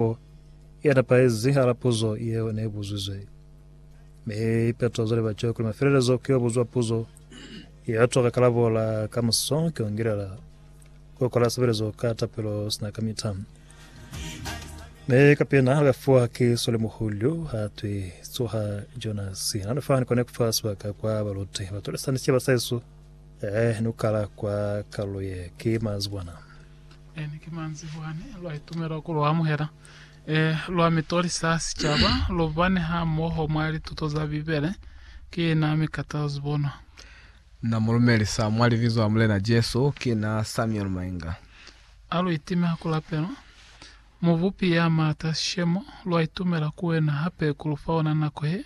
Puo ye nepahezi hala puzo ye ne i buzwizwe, mi ipeto za liba ceo kuli mafelelezo ki yo buzwa puzo ye ya twa ka kalabo la ka muso ki yo ngilela ku kola sebelezo ka tapelo sina kamita. Mi ka pina ha ka fuwa ki swalimuhulu ha twi tsoha Jonasi. Na nifani kone kufa sibaka kwa baluti batolisa ni siba sa Yesu eh nukala kwa kaluye ki mazibwana. Eni ki manzibwani lwa itumela ku lu amuhela. E, lwa mi tolisa sicaba, lu bani ha moho mwa lituto za Bibele. Ki na mi Carter Zibonwa. Na mu lumelisa mwa Libizo la Mulena Jesu. Ki na Samuel Mainga. A lu itime ha ku lapelwa. Mubupi ya maata sishemo, lwa itumela ku wena hape ku lu fa ona nako ye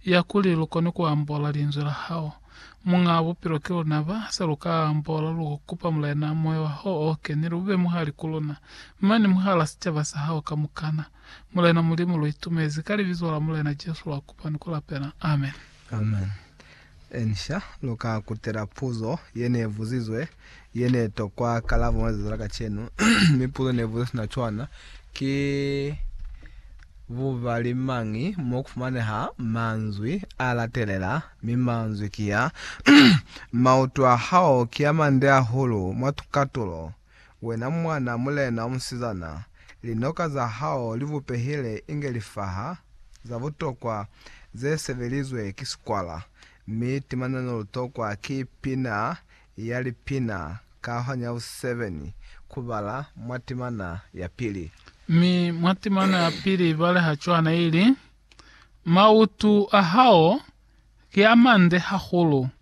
ya kuli lu kone ku ambola Linzwi la hao. Muñaa Bupilo ki luna ba sa lu ka ambola, lu kupa Mulena, Moya wa hao o Kenile u be muhali ku luna, mane mwahal'a sicaba sa hao kamukana. Mulena Mulimu, lu itumezi, ka Libizo la Mulena Jesu lwa kupa ni ku lapela. Amen. Amen. Inca lu ka kutela puzo ye ne buzizwe ye ne tokwa kalabo mwa lizazi la kacenu, mi puzo ne buzizwe sina cwana ki bubali mañi mo ku fumaneha manzwi a latelela, mi manzwi ki a, Maoto a hao ki a mande hahulu mwa katulo, Wena mwana mulena omusizana, linoka za hao li bupehile inge lifaha za butokwa ze sebelizwe ki sikwala, mi timana ne lu tokwa ki pina ya lipina ka hwani ya busisebeni ku bala mwa timana ya pili. Mi mwa timana ya pili baleha cwana ili, Mautu a hao ki a mande hahulu.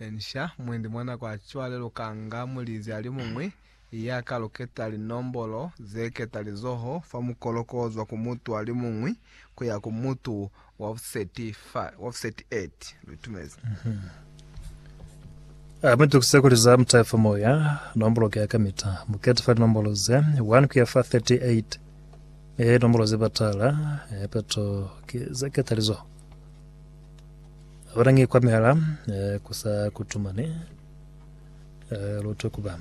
Inca, mwendi mwa nako ya cwale lu ka nga mulizi a li muñwi ya ka luketa linombolo ze keta lizoho fa mukolo k'o zwa ku mutu a li muñwi ku ya ku mutu wa buseti 8. Lu itumezi. A mu itukise kuli za mutahe fa moya, nombolo ki ya kamita. Mu kete fa linombolo ze 1 ku ya fa 38. Ee, linombolo ze patala, ee, peto ki ze keta lizoho. Bona nge kwa mihala eh, ku sa kutumane eh, lutwe kuba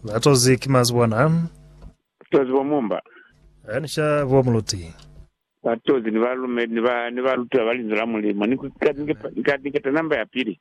batozi ki mazi bona Tozi bo mumba. eh, ni sha bo muluti Batozi ni ba lume ni ba ni ba lutwa ba linzwi la Mulimu. Ni ku- ka- ni ke- ni ka- ni keta namba ya pili.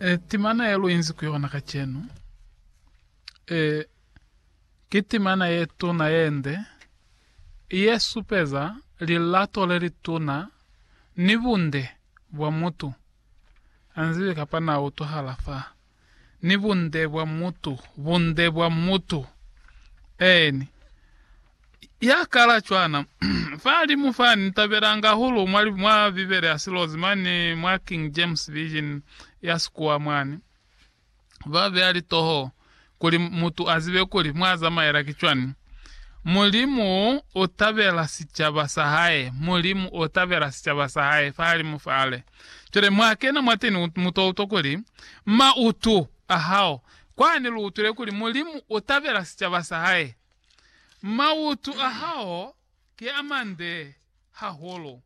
E, timana ye luinzi ku yona kacenu, e, ki timana ye tuna yende, ye supeza lilato le lituna ni bunde bwa mutu. Ha nzibi kapa na utwahala fa. Ni bunde bwa mutu, bunde bwa mutu. Eeni. Ya kala cwana, Fahalimu fa, ni tabelanga hahulu mwa, mwa Bibele ya Silozi mane mwa King James Version ya Sikuwa mwani, ba beya litoho kuli mutu a zibe kuli mwa zamaela ki cwani. Mulimu u tabela sicaba sa Hae, Mulimu u tabela sicaba sa Hae fahalimu fale. Cwale mwa kena mwateni, u, mu to utwa kuli, mautu a hao, kwani lu utwile kuli Mulimu u tabela sicaba sa Hae. Mautu a hao ki a mande hahulu,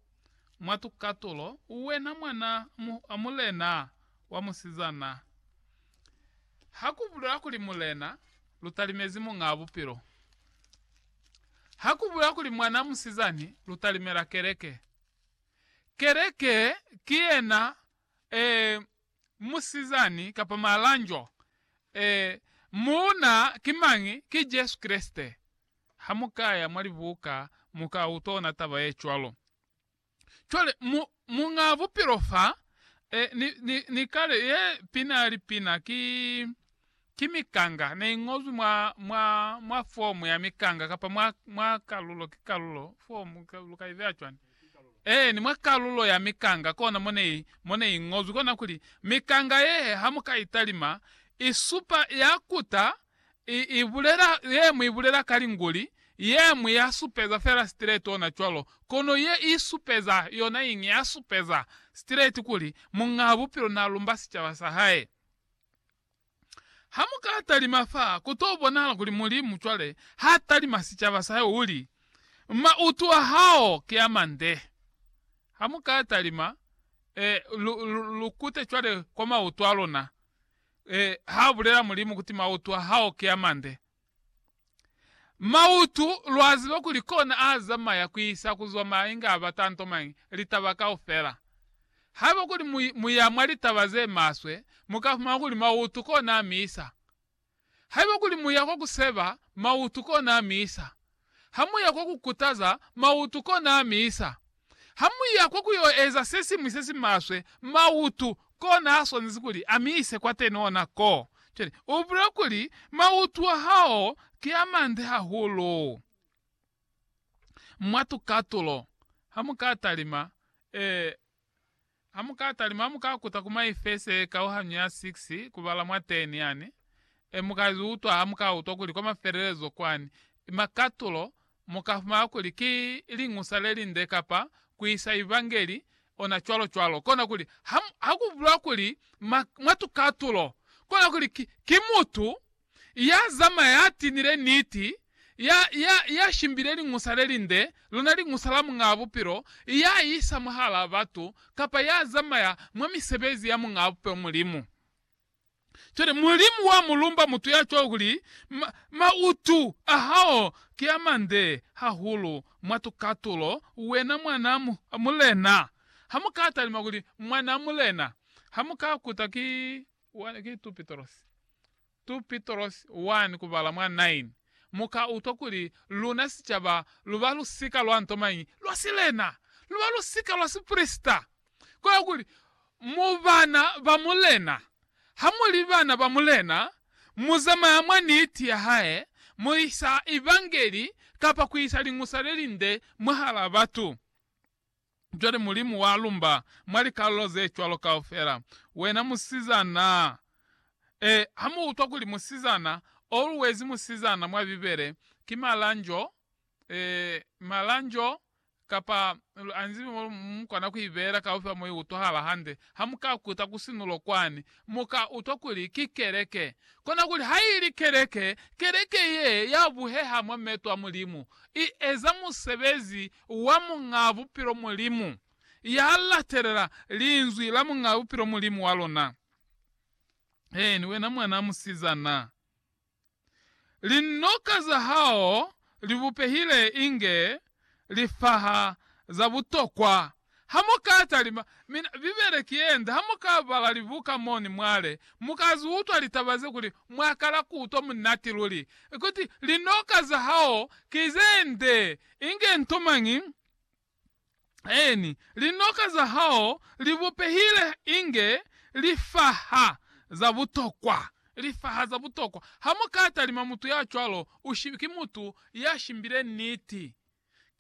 mwa tukatulo, uwena mwana a mulena wa musizana. Ha ku bulela kuli mulena, lu talimezi Muñaa Bupilo. Ha ku bulela kuli mwana a musizani, lu talimela Keleke. Keleke ki yena, ee, musizani kapa malanjwa, ee, muuna ki mañi? Ki Jesu Kreste. Hamukaya mwa libuka muka utona taba yecwalo. Cwale, mu, Muñaa Bupilo fa, ee, ni, ni, ni kale, yee, pina, lipina, ki. Ki mikanga ne iñozwi mwa, mwa, mwa fomu ya mikanga, kapa mwa, mwa kalulo, ki kalulo, fomu, lu ka ibeya cwani? Eeni, mwa kalulo ya mikanga, kona mo ne i, mo ne i ñozwi. Kona kuli, mikanga ye, ha mu ka i talima, i supa, ya kuta, i, i bulela, yeñwi i bulela ka Linguli, yeñwi ya supeza fela straight ona cwalo, kono ye i supeza, yona iñi, ya supeza straight kuli, Muñaa Bupilo na lumba sicaba sa Hae. Ha mu ka talima fa, ku to bonahala kuli Mulimu cwale ha talima sicaba sa hae, u li, Mautu a hao ki a mande. Ha mu ka talima, eh, lu, lu, lu kute cwale kwa mautu a luna, eh, ha bulela Mulimu kuti mautu a hao ki a mande. Mautu, lwa ziba kuli kona a zamaya ku isa ku zwa mwa inge a bata nto mañi, litaba kaufela. Haiba kuli mu, mu ya mwa litaba ze maswe, mu ka fumana kuli mautu kona a mi isa. Haiba kuli mu ya kwa ku seba, mautu kona a mi isa. Ha mu ya kwa ku kutaza mautu kona a misa. Ha mu ya kwa ku yo eza se siñwi se si maswe, mautu kona a swanezi kuli a mise kwateni ona ko. Cwale, u bulela kuli, Mautu a hao ki a mande hahulu. Mwa tukatulo, ha mu ka talima, ee, Amukatalima amukakuta ku My Face kauhanyo ya 6 kubala mwa 10 yani, e mukaziutwa hamukautwa kuli kwa mafelelezo kwani ima katulo, mukafumana kuli ki Liñusa Lelinde kapa kuisa Evangeli ona cwalo cwalo. Kona kuli ha, hakubulwa kuli mwa, mwa tukatulo, kona kuli ki, ki mutu. ya zamaya, ya tinile niti, ya, ya, ya shimbile Liñusa le linde, lona Liñusa la Muñaa Bupilo, ya isa mwahalaa batu, kapa ya zamaya mwa misebezi ya Muñaa Bupilo, Mulimu. Cwale, Mulimu wa mu lumba mutu ya cwalo kuli, Ma, mautu a hao ki a mande hahulu mwa tukatulo, wena mwanaa mu, mulena. Ha mu ka talima kuli, Mwanaa mulena, ha mu ka kuta ki 1 ki 2 Pitrosi 2 Pitrosi 1 kubala mwa 9 Mu ka utwa kuli luna sicaba lu ba lusika lwa nto mañi? Lwa silena! Lu ba lusika lwa siprisita! Kono kuli, mu bana ba Mulena. Ha mu li bana ba Mulena, mu zamaya mwa niti ya hae, mu isa Evangeli kapa ku isa Liñusa le Linde mwahal'a batu. Cwale Mulimu wa lumba mwa likalulo ze cwalo kaufela, Wena musizana! E, ha mu utwa kuli musizana, always musizana mwa Bibele, ki malanjo, e, malanjo, kapa, lu anzibi mo lu, mu kona ku i beela kaufel'a mo i utwahala hande. Ha mu ka kuta ku sinulo kwani, mu ka utwa kuli ki keleke. Kona kuli ha ili keleke, keleke ye ya buheha mwa meto a Mulimu, i eza musebezi wa Muñaa Bupilo Mulimu, ya latelela Linzwi la Muñaa Bupilo Mulimu wa luna. Eeni, wena mwanaa musizana. Linoka za hao li bupehile inge lifaha za butokwa Ha mu ka talima, mina, Bibele ki ye nde, ha mu ka bala libuka mo ni mwale, mu ka zwi utwa litaba ze kuli mwa kala ku utwa munati luli, kuti linoka za hao ki ze nde, inge nto mañi, eeni, linoka za hao li bupehile inge lifaha za butokwa, lifaha za butokwa. Ha mu ka talima mutu ya cwalo, u shi, ki mutu ya shimbile niti.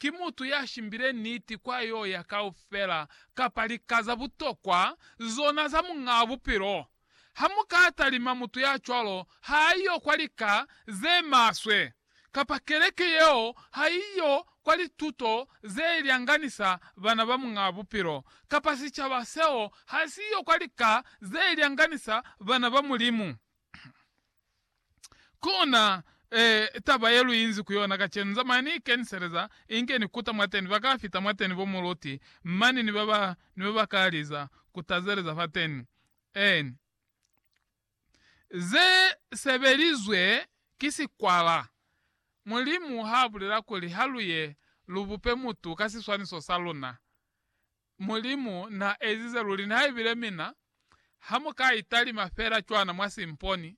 Ki mutu ya shimbile niti kwa yo ya kaufela kapa lika za butokwa zona za Muñaa Bupilo? Ha mu ka talima mutu ya cwalo, ha a yo kwa lika ze maswe, kapa keleke yeo ha i yo kwa lituto ze lyanganisa bana ba Muñaa Bupilo, kapa sicaba seo ha si yo kwa lika ze lyanganisa bana ba Mulimu. Kona eh, taba ye lu inzi ku yona kacenu, Zamaya ni ikeniseleza, inge ni kuta mwateni, ba ka fita mwateni bo muluti, mani ni ba ba, ni ba ba ka liza, ku tazeleza fateni. En. Ze sebelizwe ki sikwala. Mulimu ha bulela kuli, Ha lu ye, lu bupe mutu ka siswaniso sa luna. Mulimu na ezize luli, nihaibile mina, ha mu ka italima fela cwana mwa si mponi.